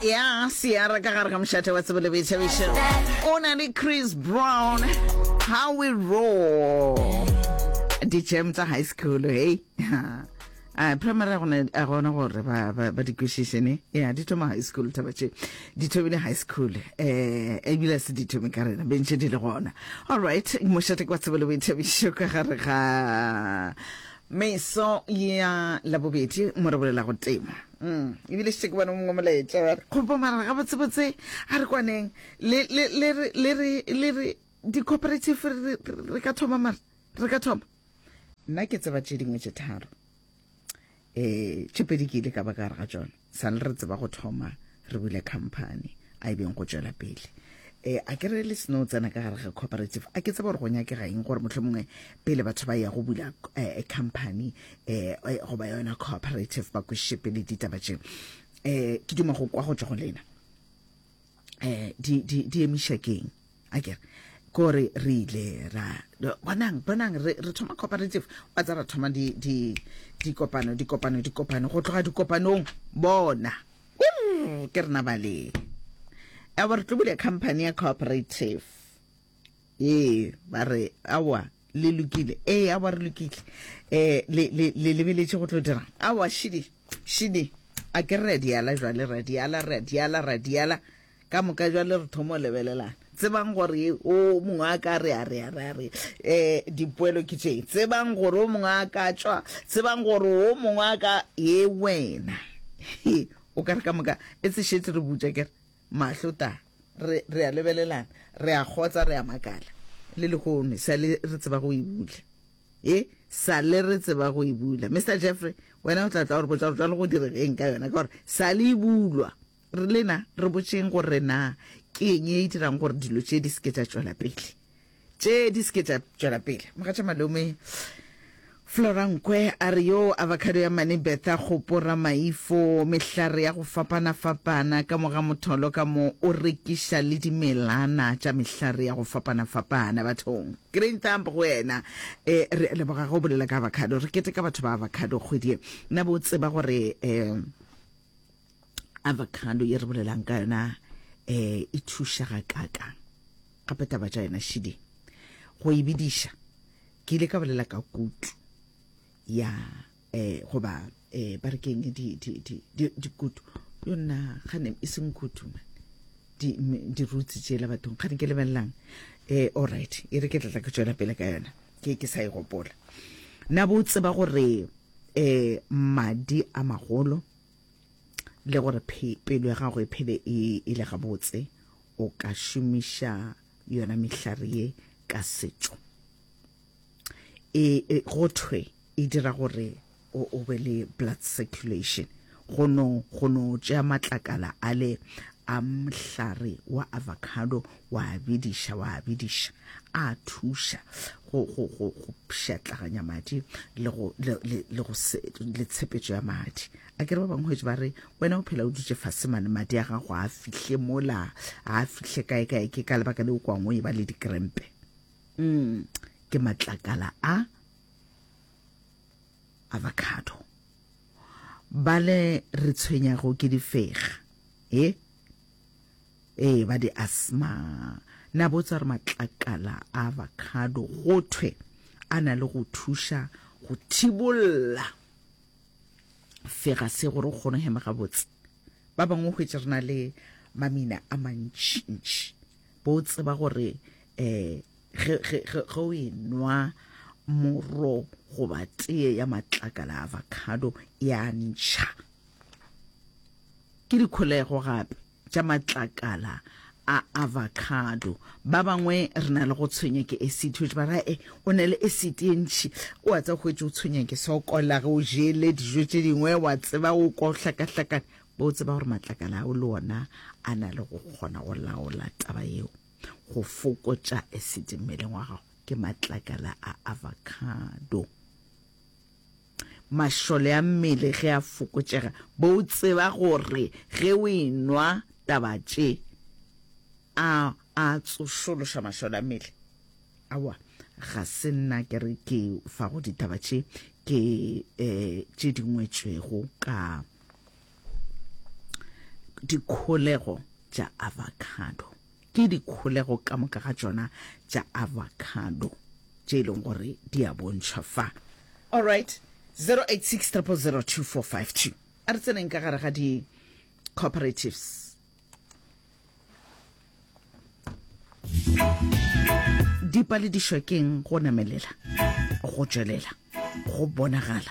ya seara ka gare ga mošate wa tsebo le boithabišo o na le chris brown how we roll di-jam tsa high school hey a primary a gona a gona gore ba ba ba di kwešiše ne ya di thoma high school taba tše di thomile high school eh ebile se di thome ka rena bentše di le gona all right mošate kwa tsebo le boithabišo ka gare ga meso ya labobedi mo re bolela go tema E bile šetše ke bona o mongwe molaetša wa re. Kgopo mara gabotsebotse a re kwaneng le re di-cooperative re ka thoma mara re ka thoma nna ke tseba tše dingwe tše tharo um tše pedi ke ile ka ba ka gare ga tsona sa le re tseba go thoma re bule company a e beng go tšwela pele um a ke re le seno tsena ka gare ga cooperative a ke tseba gore go nyakega eng gore motlho mongwe pele batho ba ya go bula um company eh, eh go ba yona cooperative ba kwešepe le ditaba tše eh ke duma go kwa go tswa go lena eh di di di emisha keng a kere kore re ile ra bonang bonang re re thoma cooperative wa tsa ra thoma di di di kopano di kopano di kopano go tloga di kopanong bona ke rena ba le ya ba re tlobile company ya cooperative Ee, ba re, Aowa, le lokile. Ee, aowa, re lokile. Um le, le, le lebeletše go tlo dirang? Aowa, šidi, šidi. A ke re a diala jwale, re a diala, re a diala, re a diala. Ka moka jwale re thomo lebelelana. Tsebang gore o mongwe a ka re a re a re a re um dipoelo ke tše. Tsebang gore o mongwe a ka tšwa. Tsebang gore o mongwe a ka ye wena. o ka re ka moka e se šetse re butša ke re. Mahlo ta, re, re a lebelelana, re a kgotsa, re a makala. Le lehono, sa le re tseba go e bula. E, sa le re tseba go e bula. Mister Jeffrey, wena o tla tla gore botša gore jalo go direga eng ka yona, ka gore sa le e bulwa. Re lena, re botšeng gore na ke eng e e dirang gore dilo tše di se ke tša tšwela pele. tše di se ke tša tšwela pele. Mogatša Malome Flora Nkwe a re yo avocado ya Mane Bertha Kgopo Ramaifo, mehlare ya go fapana-fapana ka moga motholo ka mo o rekiša le dimelana tša mehlare ya go fapana-fapana bathong. Green thumb go wena. E, re a leboga ge o bolela ka avocado. Re keteka batho ba avocado kgwedi ye. Na bo tseba gore e, avocado ye re bolelang ka yona um e thuša ga kakang gape taba tša yona šiding go e bidiša ke ile ka bolela ka kutu ya um goba um ba re keng dikutu yo nna gane e seng kutu man dirutsi tšela bathong gane ke lebelelang um allright e re ke tlatla ke tswela pele ka yona ke ke sa e gopola na bo tseba gore um madi a magolo le gore pelo ya gago e phele e, e le gabotse o ka šomiša yona mehlare ye ka setšo e, e go thwe e dira gore o, o be le blood circulation go no go no tšea matlakala a le a mhlare wa avocado Wa bediša, wa bediša. A thuša go, go, go, go pšhatlaganya madi le, go, le, le, le, go se, le tshepetšo ya madi. A kere ba bangwe hwetše ba re, wena o phela o dutše fase mane, madi a gago a fihle mola, a fihle kae kae, ke ka lebaka le o kwangwe e ba le dikrempe. Mm, ke matlakala a avocado bale re tshwenyago ke difega e Ee, ba di asthma. Na botsa re matlakala a avocado go thwe a na le go thuša go thibolla fegase gore o kgone hema gabotse. Ba bangwe go hwetša re na le mamina a mantšintši. Bo tseba gore eh ge ge ge ge o e nwa moro goba tee ya matlakala a avocado ya ntšha. Ke dikholego gape. tša matlakala a avocado. Ba bangwe re na le go tshwenya ke esiti, hwetše ba ra e o na le esiti e ntši, o a tsa hwetše o tshwenya ke sokola ge o jele dijo tše dingwe, wa tseba o kwa o hlakahlakane, bo o tseba gore matlakala ao le ona a na le go kgona go laola taba yeo, go fokotša esiti mmeleng wa gago ke matlakala a avocado. Mašole a mmele ge a fokotšega, bo o tseba gore ge o enwa taba tše a a tsošološa mašole a mmele? Aowa, ga se nna ke re ke fago ditaba tše, ke um tše di ngwetšwego ka dikholego tša avocado. Ke dikholego ka moka ga tšona tša avocado tše e leng gore di a bontšhwa fa. Alright, 0860002452. A re tseneng ka gare ga di-cooperatives. Dipaledišwa keng go namelela go tšwelela go bonagala.